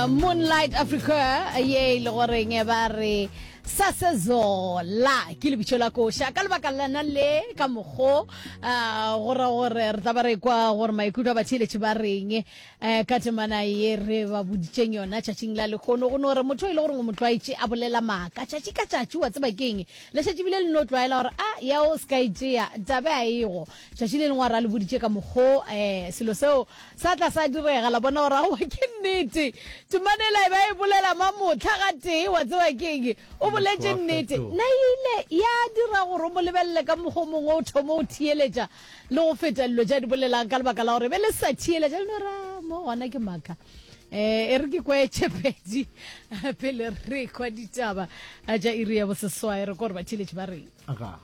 moonlight africa ye e le goreng ba re sasezola ke lebitso la koša ka lebaka lana le ka mokgo um go ra gore re tla ba re kwa gore maikutlo a batheeletše ba reng um ka temana ye re ba boditseng yona tšatšing la lekgono go no re motho e le goreng o motlwaetše a bolela maaka tšatši ka tšatši wa tseba keng le šetšebile le no tlwaela gore a ya o se ka etsea tabe a ego Tšatši le lengwe a re a le boditše ka mokgo selo seo sa tla sa direga, la bona gore aowa ke nnete. Temana ela e be a e bolela ma mohla gatee, wa tseba ke eng? O boletše nnete. Na e ile ya dira gore o mo lebelele ka mokgwa o mongwe, o thome go theeletša le go feta dilo tše a di bolelang ka lebaka la gore e be e le sa theeletša? Le no re, A, mo gona ke maaka. E re ke kwa e tše pedi pele re kwa ditaba tša iri ya boseswai, re kwa gore batheeletši ba reng.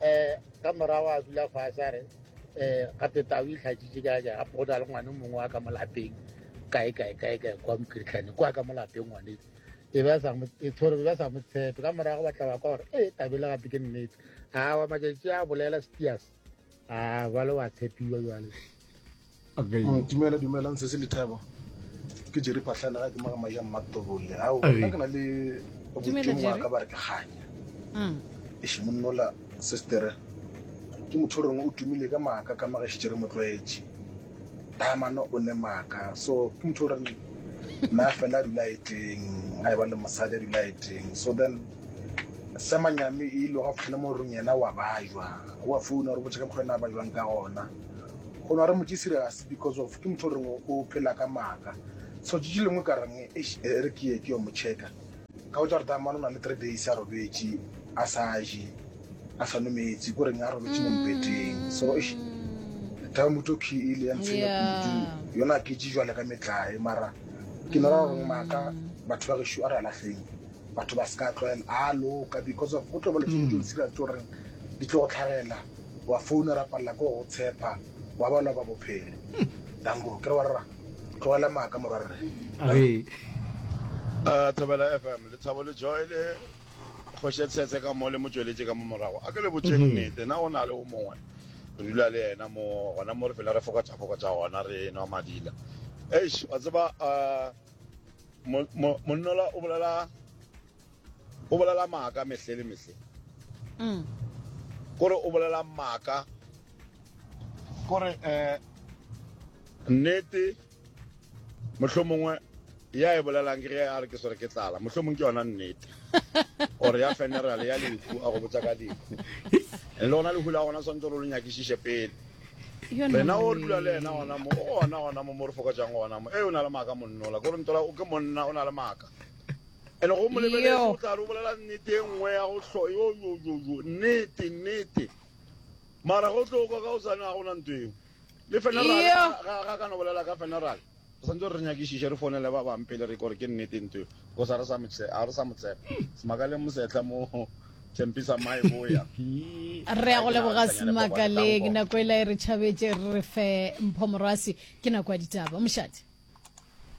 um ka morago a dula fase a re um gape tao e tlhatšitše ka ka gape go na le ngwane mongwe wa ka mo lapeng kae kae kae kae kwa mokiritlhane kwa ka mo lapeng ngwane e ba sa e tshore ba sa mo tshepe ka morago ba tla ba kwa gore e tabele gape ke nnete a wa matšatši a bolela steas Ah, bale wa tshepiwa bjale. Okay. Mm, dumela dumela ntse se lethabo. Ke jere phatlana ga ke maga maya mmatobole. Ao, nna ke na le botšong wa ka ba re ke ganya. Mm. E shi monnola sister. Ke motho rengwe o tumile ka maka ka maga shi jere motlwaetše. Taamane o ne maaka so ke motho o reng na fela a dula eteng a e ba le mosadi a dula eteng so then semanyami e ile ga fitlhele mo rong yena wa bajwa wa founa gore botšha ka mokgwa ena a bajwang ka gona go na re motse serious because of ke motho o reng o phela ka maaka so tšitši lengwe ka reng e re ke ye ke yo mo checka Ka botša gore Taamane o na le three days a robetše a sa je a sa nometse ko reng a robetše mo mpeteng so tamuto ke e le ya ntshwenya kudu yona ke tše jwale ka metlae mara ke nora gore maaka batho ba gešo a re alahleng batho ba se ka tlwaela a loka because of go tlo ba letšo tšo ntshira tso goreng di tlo go tlhagela wa founa ra palela ko go tshepa wa balwa ba bophelo danko ke re wa rra tlogela maaka morwarre a thobela fm lethabo le joy le kgoše tshetse ka mo le mo tšweletše ka mo morago a ke le botšeng mhm. nnete na o na le o mongwe re dula le yena mo gona mo re fela re fokotšafokotša gona re nwa madila eish wa tseba monnola o bolela O bolela maaka mehle le mehle. Kore o bolela maaka. Kore eh, nnete mohlomongwe ya e bolelang ke ge a re ke swere ke tlala, mohlomong ke yona nnete. Or ya funeral ya lehu a go botsa ka lehu. Le lona lehu la gona swantse re lo nyakišiše pele. Rena o re dula le yena gona mo, o gona gona mo mo re fokotšang gona mo. Ee, o na le maaka monnola. Kore ntola o ke monna, o na le maaka. ene go mo lebeletse o tla re o bolela nnete e nngwe ya go hlo yoyoyoyo nnete nnete mara go tlo kwa ka o sane ga gona nto eo le feneralga kana bolela ka feneral re santse re nyakišiše re founele ba bang pele re kore ke nnete nto eo because ga re sa motsepa semakaleng mosetlha mo tshempisa mae boya re ya go leboga semakaleng nako e la e re tšhabetse re re fe mpho morwasi ke nako ya ditaba mošate